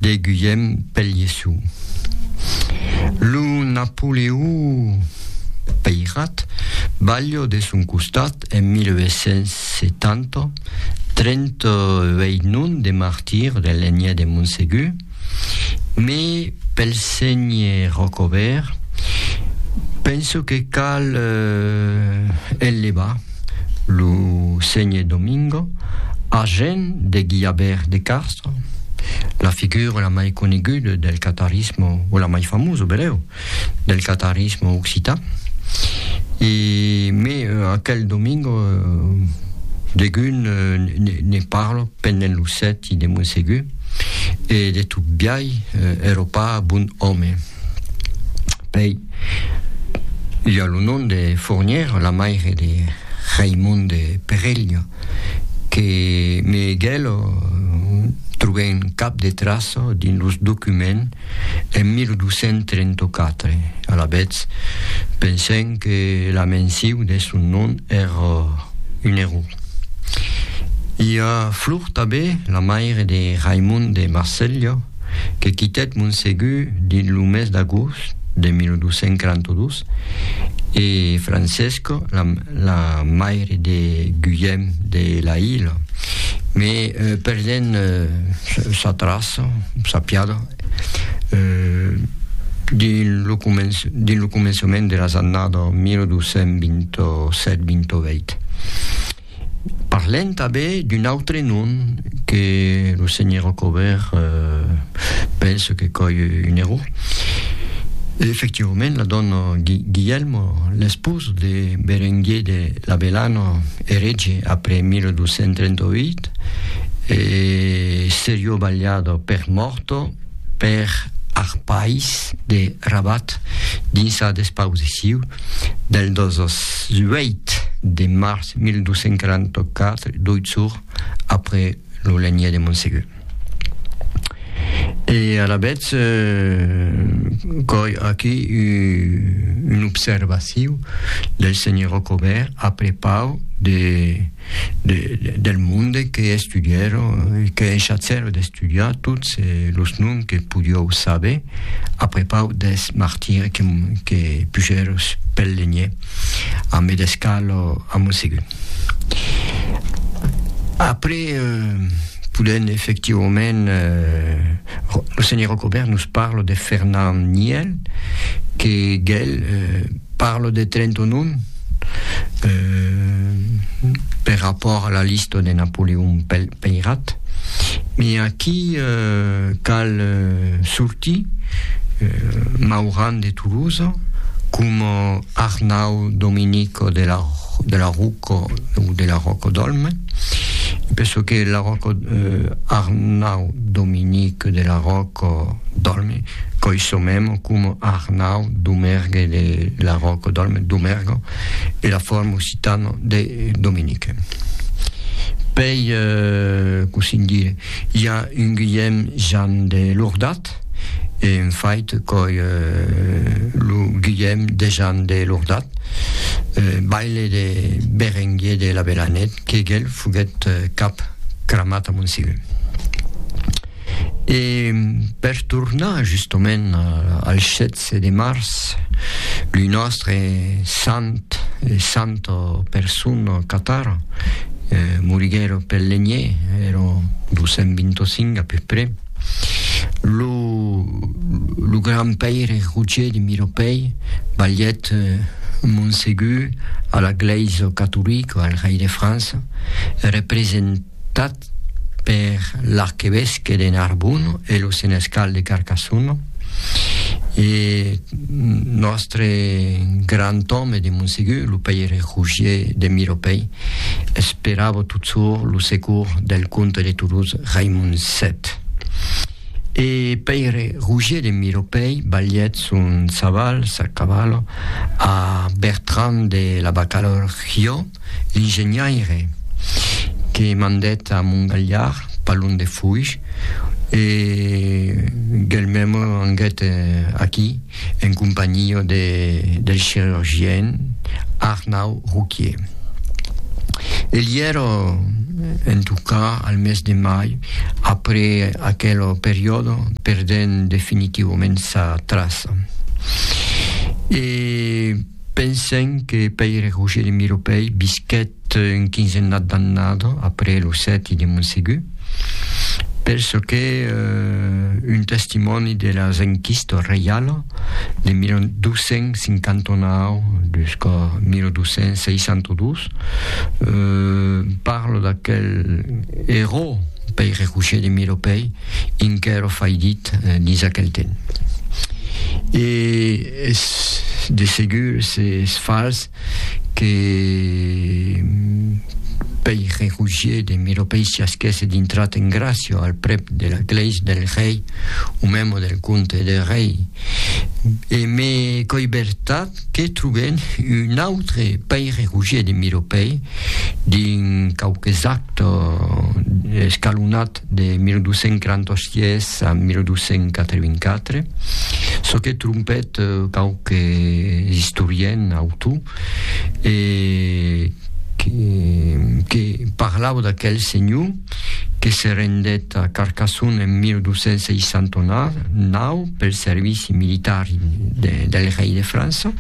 De Guillem Pelliçu. Lo Napoleó Peirat, balho de son costat en 1870, 38 non de martir de lenhe de Montsegur, me pel senhe Rocobèrt, penso que cal el levar. lo senhe Domingo, argent de Guillabert de Castro, la figura la mai coneguda del catarisme, o la mai famosa, berèu, del catarisme occitan. E, me, aquel Domingo, degun ne parlo pendent lo sèti de Montsegur, e de tot biai, èra pas bon òme. Pei, i a lo nom de Fournière, la maire de Raimond de Perelha, que me gelo trobèn cap de traça dins los documents en 1234. Alavetz, pensèm que la mensiu de son nom èra un error. I a Flor tanben, la maire de Raimond de Marselha, que quitèt Montsegur dins lo mes d'agost de 1242 e Francesco, la, la maire de Guillem de la Ila, me euh, perdent euh, sa traça, sa piada, euh, dins lo, començ, dins lo començament de las annada 1227-28. Parlem tanben d'un autre nom que lo senhor Rocobèrt pense que coi un error. Efectivament, la dòna Guilhèlmo, l'espós de Berenguer de Labellano, erege après 1238, e serió balhada per mòrto, per ar país de Rabat dins sa despausiciu del 18 de març 1244, doit jorn après lo lenhèr de Montsegur. E alavetz coi aquí un observaciu del senhor Rocobèrt a prepau de del monde que estudièro e que enchatzèro d'estudiar tots los noms que podió saber a prepau deth martire que pujèro pel lenhèr a medescar lo a Monsegut. Après, podent efectivament, lo senhor Rocobèrt nos parla de Fernand Niel que gèl, Parlo de Trentonon per rapòrt a la lista de Napoleon Peirat, me aquí cal sortir Mauran de Tolosa coma Arnau Dominico de la Rocca. Cò de la Ròco d'Òlme, per çò que la Ròco Arnau Dominic de la Ròco d'Òlme, coi çò memo coma Arnau Domergue de la Ròco d'Òlme, Domergo, e la forma occitana de Dominique. Pei, cossí dire, i a un Guilhèm Jan de Lordat, Art. E un fait coi lo Guilhèm Dejan de Lordat, baile de Berenguer de Labelanèt, qu'eguel foguèt cap cramat a Montsiu. E per tornar justament al 16 de març, lo nòstre sant, santo persun catar, moriguèro pel lenhier, ero 225 a peu près, Lo lo grand paire Roger de Miropei balhèt Monsegur a la glèisa catolica al rei de França, representat per l'arquevesque de Narbona e lo senescal de Carcassona, e nòstre grand òme de Monsegur, lo paire Roger de Miropei, esperava tot çò lo secours del comte de Toulouse Raimond 7. E Pèire Roger de Miropèi balhèt son saval, sa cavalo, a Bertran de la Bacalor Rio, l'ingeniaire, que mandèt a Mongalhard, Palon de Foish, e guelh mèmo anguèt aquí, en companhia de, del chirurgien Arnau Rouquier. El i èra en tocar al mes de mai, après aquel periòde, perdent definitivament sa traça. E pensem que Pèire Roger de Miropèi visquèt un quinzennat d'annada après lo sèti de Montsegur, per çò qu'es un testimòni de las enquistas reiala de 1259 jusqu'a 1262, parla d'aquel eró Pèire Roger de Miropèi, inquèra faidit dins aquel temps. E es de segur, s'es fals, que pei rerugier de Miropei siasquèsse dintrat en Gracio al prep de la glèis del rei o memo del comte de rei e me coi vertat que troben un autre pei rerugier de Miropei dins quauques actes escalonat de 1246 a 1284, çò que trompèt quauques istoriens autò, e que parlava d'aquel senhor que se rendèt a Carcassona en 1269 pel servici militar del rei de França.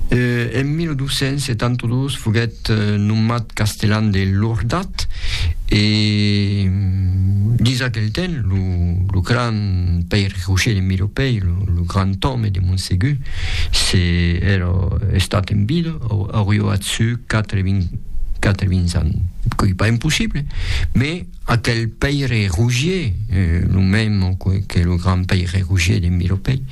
En 1272 foguèt nomat castellan de Lordat, Cat. E dins aquel temps, lo grand Pèire Roger de Miropèi, lo grand òme de Montsegur, se èra estat en vida, aurió a su quatre-vins ans, qu'ei pas impossible, mès aquel Pèire Roger, lo mèm que lo grand Pèire Roger de Miropèi,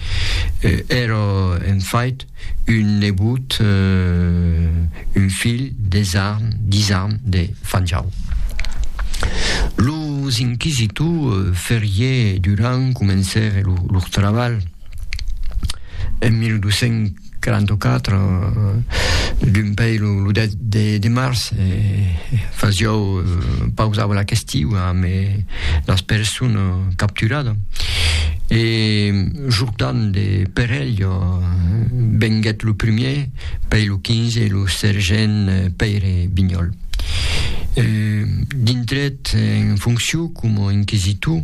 èra en fait, Un nebot, un filh, des arn, dis arn, de Fanjau. Los inquisitors Ferrier e Durand comencèren lor trabalh en 1244, d'un pei lo 10 de març, e fasiáu pausava la questiu amb las personas capturadas. Jordan de Perello venguèt lo primier pei lo 15 e lo sergent Pèire Bignòl. Dintrèt en foncion coma inquisitor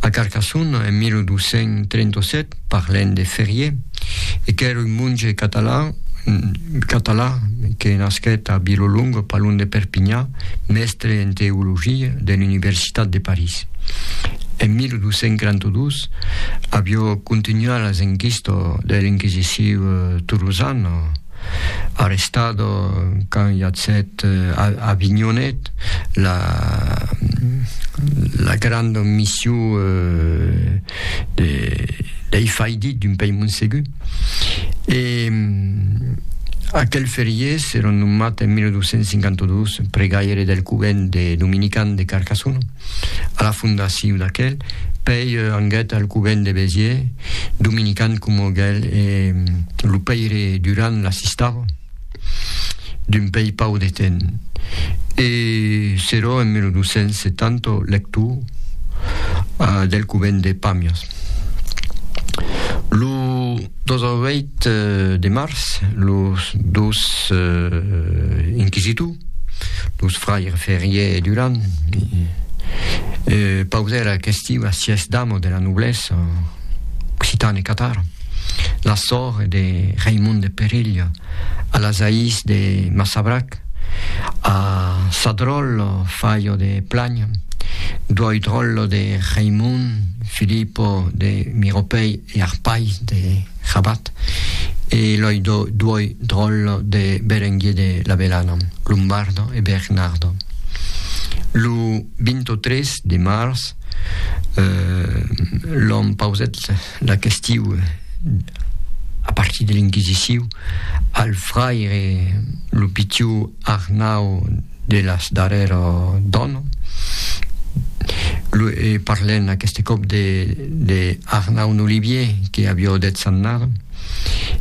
a Carcassona en 1237, parlènt de Ferrier, e qu'èra un monge català que nasquèt a Vilolonga, pas long de Perpinha, mèstre en teologia de l'Universitat de París. En 1242, Ernest, avió contunhuar las enquista de l'inquisiciu tolosana, arrestado quand iatset a Avinhonet la la granda missiu de dei faidit d'un pei Montsegur e aquel feriés era nomat en 1252 pregaire del covent de Dominican de Carcassona. a la fondaciu d'aquel, pei anguet al covent de Béziers, dominican coma gel e lo pèire Durand l'assistava, d'un pei pau de temps. E serò en 1270 lector del covent de Pàmias. Lo 18 de març, los dos inquisitors, Los fraires Ferrier e Durand pausèra a Cestiu a sièis dames de la noblesa occitana e catara, la sòr de Raimond de Perilha, a las aïs de Massabrac, a Sadròl, Fayo de Planh, Duòidròl de Raimond, Filipo de Miropèi, ier pair de Rabat, e lei duoi dròlle de Berenguer de la Belana, Lombardo e Bernardo. Lo 23 de març l'òm pausèt la questiu a partir de l'Inquisiciu al fraire lo pitiu Arnau, de las darrèr dan, e parlèn aqueste còp de, de Arnaud Nolivier, que avió deth Sannar,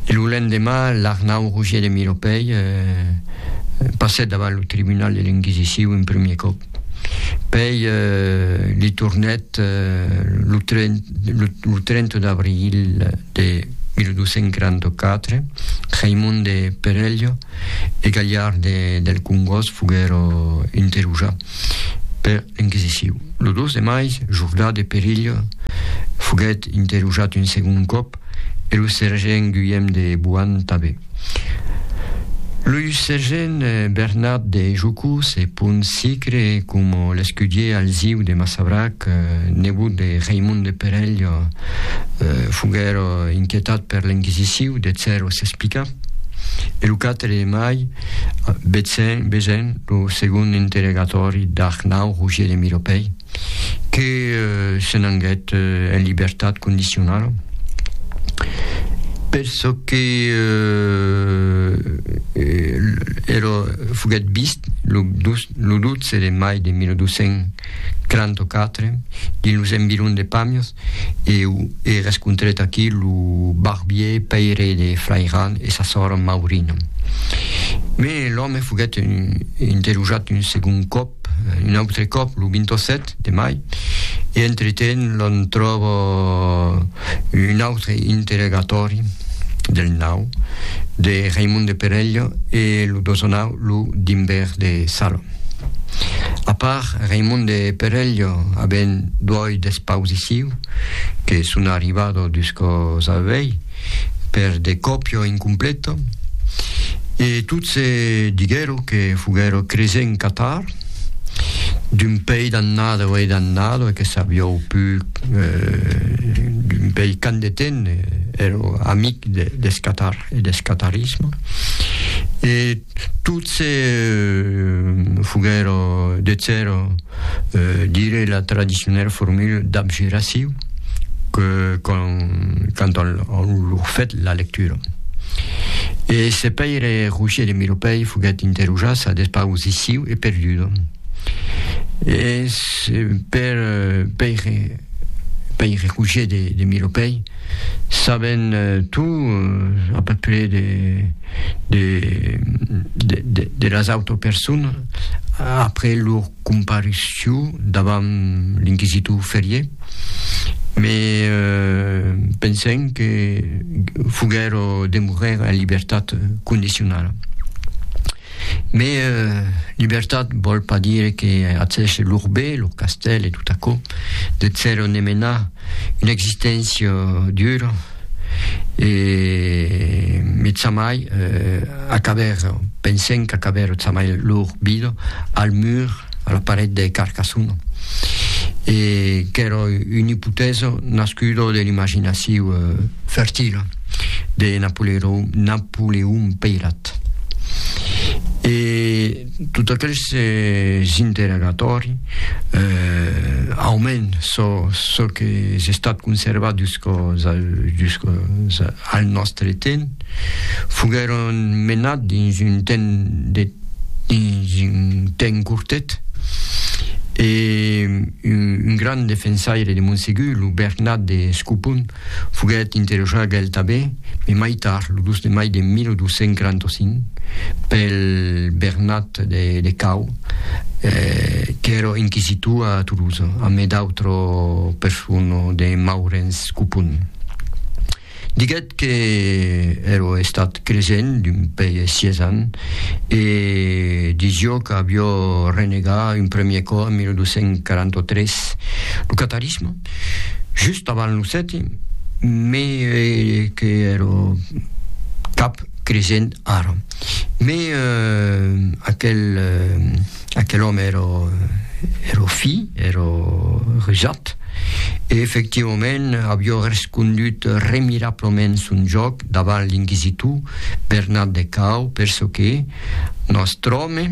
e lo lendemà l'Arnaud Roger de Miropèi passèt davant lo tribunal de l'Inquisicion un premier còp, pèi li tornèt lo 30 d'abril de 1244, Raimon de Perello, e Galhard de del Congós foguèro interroja per l'Inquisiciu. Lo 2 de mai, Jordà de Perilh foguèt interrojat un segond còp e lo sergent Guillem de Boan tanben. Lo sergent Bernat de Jocó se pon sicre coma l'escudier Alziu de Massabrac, nebot de Raimond de Perilh, foguèro inquietat per l'Inquisiciu de cèro s'explicar. E lo quatre de mai, vesen, vesen lo segond interregatòri d'Arnau Roger de Miropèi, que se n'anguèt en libertat condicionala, per çò que èra, foguèt vist lo 12 de mai de 1234 dins los environs de Pàmias, Eu e rescontrèt aquí lo barbier paire de Flairan e sa sòr Maurina. Me l'òme foguèt interrogat un segond còp, un autre còp, lo 27 de mai, e entretent l'on tròba un autre interrogatòri del nau de Raimond de Perello e lo dosonau lo Dimbèr de Salo. A part Raimond de Perello avent duòi despausiciu que son arribado dus còps al vei per de còpio incompleto e tot se diguèro que foguèro cresent catar d'un pei d'annado e d'annado e que sabiou pus d'un pei qu'an de ten èro amic deth catar e deth catarisme e Tot se foguèro de cèro dire la tradicionèla formula dab geraciu que quand on lor fèt la lectura. E se Pèire Rogier de Miropèi foguèt interrojar sa despausiciu e perduda. Es per Pèire Rogier de Miropèi saben tout à peu près de de de de de las autres personnes après leur comparution davant l'inquisitor Ferrier mais euh, pensem que foguèro de morrer en libertat condicionala. Mais euh, libertat vòl pas dire que accèche lor bé, lor castèl e tot aquò, de zèro ne menar Una existéncia dura e metzamai acaber, pensèm qu'acaber metzamai lor vida al mur, a la paret de Carcassona. E qu'èra una ipotèsa nascuda de l'imaginaciu fertila de Napoleon Peyrat. E. Tot aquel s'es interrogatòri aumenta çò qu'es estat conservat juscòs al nòstre temps. Foguèron menats dins un temps cortet e un grand defensaire de Monsegur, lo Bernat de Scopon, Foguèt interrogat el tanben, mai mai tard, lo 2 de mai de 1245, pel Bernat de Cau, qu'èra inquisitor a Tolosa, amé d'autra persona de Maurenç Copon. Diguèt que èra estat cresent d'un pei e sièis ans e disiá qu'aviá renegat un premier còp en 1243. Lo catarisme? Just avant lo sèti, me que ero cap cresent ara. Me aquel aquel òme ero ero fi, ero rusat, e efectivament avió respondut remirablament son jòc davant l'inquisitor Bernat de Cao, perçò que, nòstre òme,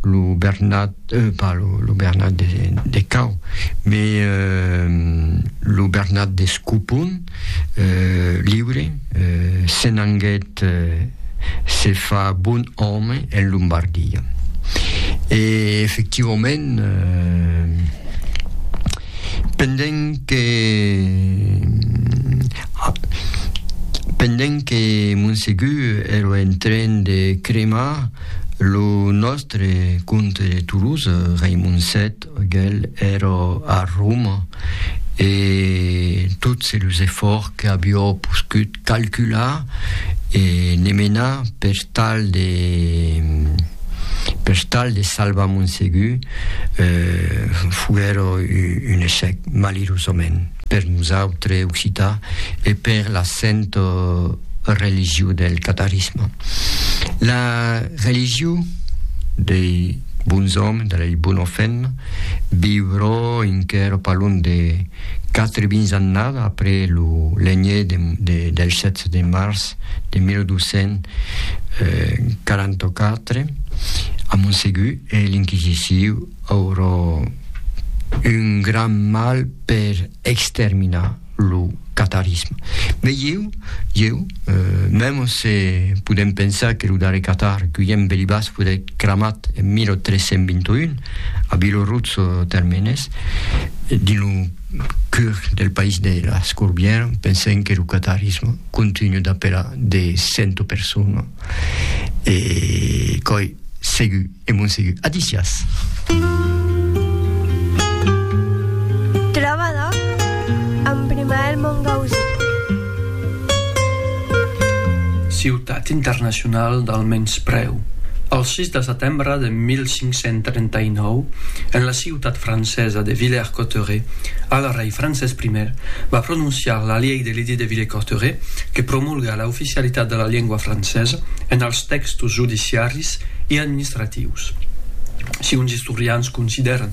lo Bernat, euh, pas lo, lo Bernat de, de Cau, me euh, lo Bernat de Scupon, euh, liure, euh, se n'anguèt euh, se fa bon òme en Lombardia. E efectivament, euh, Pendent que pendent que Monsegur ero en tren de cremar lo nòstre comte de Toulouse, Raimon Set, gèl ero a Roma e tots los efòrts qu'avió poscut calcular e ne menar per tal de per tal de salvar Montsegur eh, foguèra un echec, malirosament, per nosautres occitans e per la santa religion del catarisme. La religion dei bons òmes, dei bons femmes, viurà enquèra pas long de Quatre vins annada après lo lenhè del 7 de març de 1244, a Montsegur e l'Inquisiciu aurò un gran mal per exterminar lo catarisme. Mès ieu, ieu, mèm se podèm pensar que lo darrèr catar, Guillem Belibas, foguèt cramat en 1321, a Biloruzzo Termenes, dins lo cur del país de las Corbières, pensèm que lo catarisme continua d'apelar de cento personas, e coi segur e mon segur. Adicias! Trobada amb Primael Mongausí. Ciutat internacionala del menysprèu. El 6 de setembre de 1539, en la ciutat francesa de Villers-Cotterêts, al rei Francés I va prononciar la Llei de l'Edit de Villers-Cotterêts que promulga la oficialitat de la lengua francesa en els tèxtos judiciaris e administratius. Si uns istorians considèran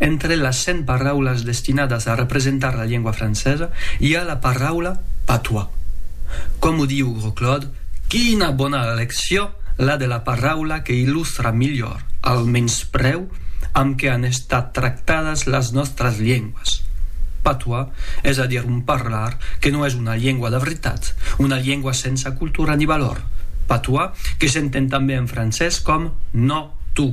Entre las cent paraulas destinadas a representar la lengua francesa, i a la paraula patois. Coma diu Gros Claude, quina bona eleccion la de la paraula que illustra milhor al menysprèu amb que an estat tractadas las nòstras lenguas. Patois, es a dir un parlar que non es una lengua de veritat, una lengua sensa cultura ni valor, patois que s'entend tanben en francés com no tu.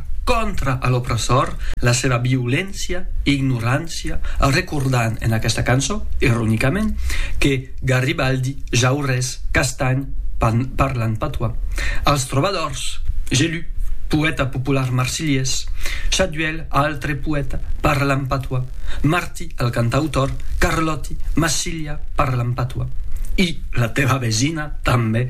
Contra a l'opressor, la seva violéncia e ignorància, recordant en aquesta cançó, ironicament, que Garibaldi, Jaurès, Castany, parlan patois, als trobadors, Gelu, poèta popular marsilhés, Chaduel, altre poèta, parlan patois, Martí, el cantautor, Carlòti, Massilha, parlan patois. I la teva vesina, tanben,